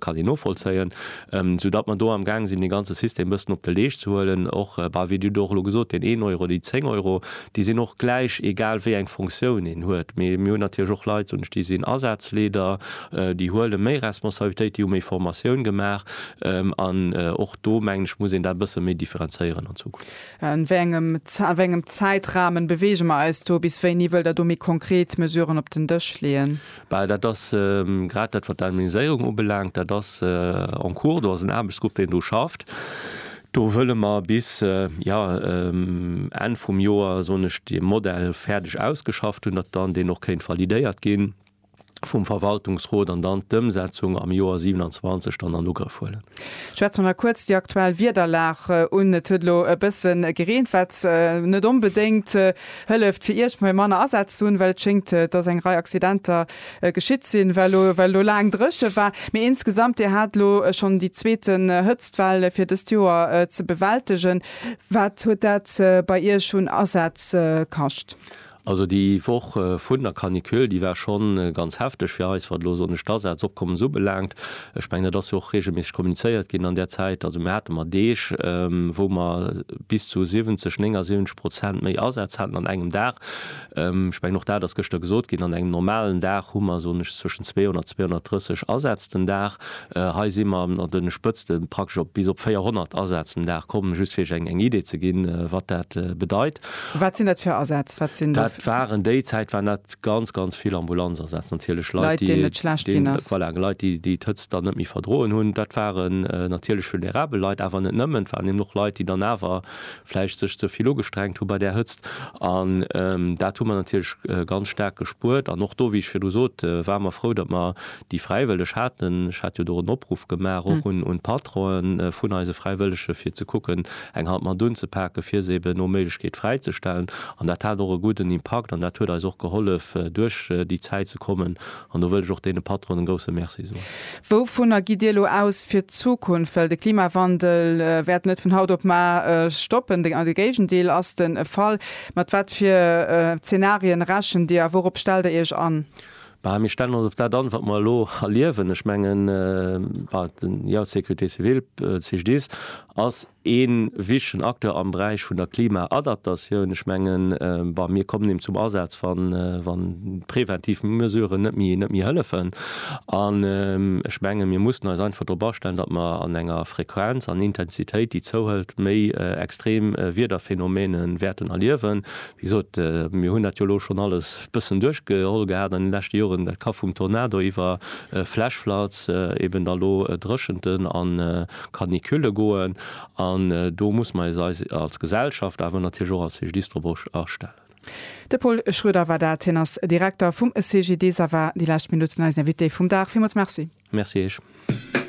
kann een novollzéien, sou datt mer do am gaang sinn dee ganze System e bëssen op de Leescht ze huelen och, bah, wéi Dir do och elo gesot, deen een Euro, déi zéng Euro, déi sinn och gläich, egal wéi eng Funktioun een huet. Mee mir hunn natierlech och Leit, soen ech, déi sinn Asazleeder, déi huele méi Responsabilitéit, déi hu méi Formatioun gemaach an och do, mengen ech, muss een dat e bësse méi differenzéieren an Zukunft. A wéi engem, a wéi engem Zäitrahmen bewege mer eis do? Bis wéini wëllt Der do méi konkret Mesuren op den Dësch leeën? Well dat ass grad dat, wat d'Anonymiséierung ubelaangt, dat ass en cours, do ass en Aarbechtsgrupp, deen do schafft. Do wëlle mer bis, jo, Enn vum Joer, soen ech, dee Modell fäerdeg ausgeschafft hunn, datt dann deen och kéint validéiert gi vum Verwaltungsrot an dann d'Ëmsetzung am Joer 27 dann an Ugrëff huelen. Schwätze mer nach kuerz déi aktuell Wiederlag un. Et huet elo e bësse gereent, wat net onbedéngt. Hëlleft, fir iergmoi manner Asätz ze hunn, well et schéngt, dass eng Rei Accidenter geschitt sinn, well elo well elo laang dréche war. Mee insgesamt, Dir hat elo schonn déi zweete Hëtztwell fir dëst Joer ze bewältegen. Wat huet dat bei Iech un Asätz kascht? Also déi Woch vun der Canicule, déi war schonn ganz hefteg fir eis, wat elo, soen ech, d'Asätzopkommes ubelaangt. Ech mengen, et ass jo och reegelméisseg kommunizéiert ginn an där Zäit. Also mir hate mer Deeg, wou mer bis zu 70, 79 Prozent méi Asätz haten an engem Dag. Ech mengen, och dat ass gëschter gesot ginn, an engem normalen Dag hu mer, soen ech, zwëschen 200, 230 Asätz den Dag. Hei si mer an de Spëtzte praktesch op bis op 400 Asätz den Dag komm, just fir Iech eng Idee ze ginn, wat dat bedeit. Wat sinn dat fir Asätz? Dat waren déi Zäit waren dat ganz ganz vill Ambulanz asetzt natierlech Leit déi net schlecht ginn ass voilà Leit déi déi d'Hëtzt dann net méi verdroen hunn. Dat waren natierlech vulnerabel Leit awer net nëmmen, et waren eben och Leit déi dann awer vläicht sech ze vill ugestrengt hu bei där Hëtzt an dat hu mer natierlech ganz staark gespuert an och do wéi ech virdu sot ware mer frou datt mer Déi Fräiwëlleg haten, ech hat jo do en Opruff gemaach och un d'Patronen vun eise Fräiwëllege fir ze kucken, eng Hand mat unzepaken, fir se eben no Méiglechkeet fräizestellen. An dat hat och e gudden Impakt an dat huet eis och gehollef, duerch déi Zäit ze kommen. An do wëll ech och deene Patronen e grousse Merci soen. Wouvunner gitt Dir elo aus fir d'Zukunft? Well de Klimawandel wäert net vun haut op mar stoppen, de Géigendeel ass de Fall. Mat wat fir Zenarien rechent Dir a wourop stellt Der Iech an? Bah, mir stellen ons op dat an, wat mer elo erliewen. Ech mengen, jo, d'Sécurité civile, d'Cegedis, ass ee wichtigen Acteur am Beräich vun der Klimaadaptatioun. Ech mengen, bah, mir kommen eben zum Asaz, wa präventiv Mesuren net méi hëllefen. An ech mengen, mir mussen eis einfach drop astellen, datt mer an enger Frequenz an Intensitéit, déi zouhëlt, méi extrem Wiederphenomene wäerten erliewen, Wéi gesot, mir hunn dat jo elo schonn alles e bëssen duerchgeholl gehat an de leschte Joren. Dat ka vum Tornado iwwer Flash-Floods, eben da lo Dréchenten a Canicule goen. An do muss mer eis als Gesellschaft, awer natierlech och als CGDIS drop astellen. De Pol Schroeder war dat. Hien ass Direkter vum CGDIS a war déi lescht Minutten eisen Invité vum Dag. Villmools Merci. Merci Iech.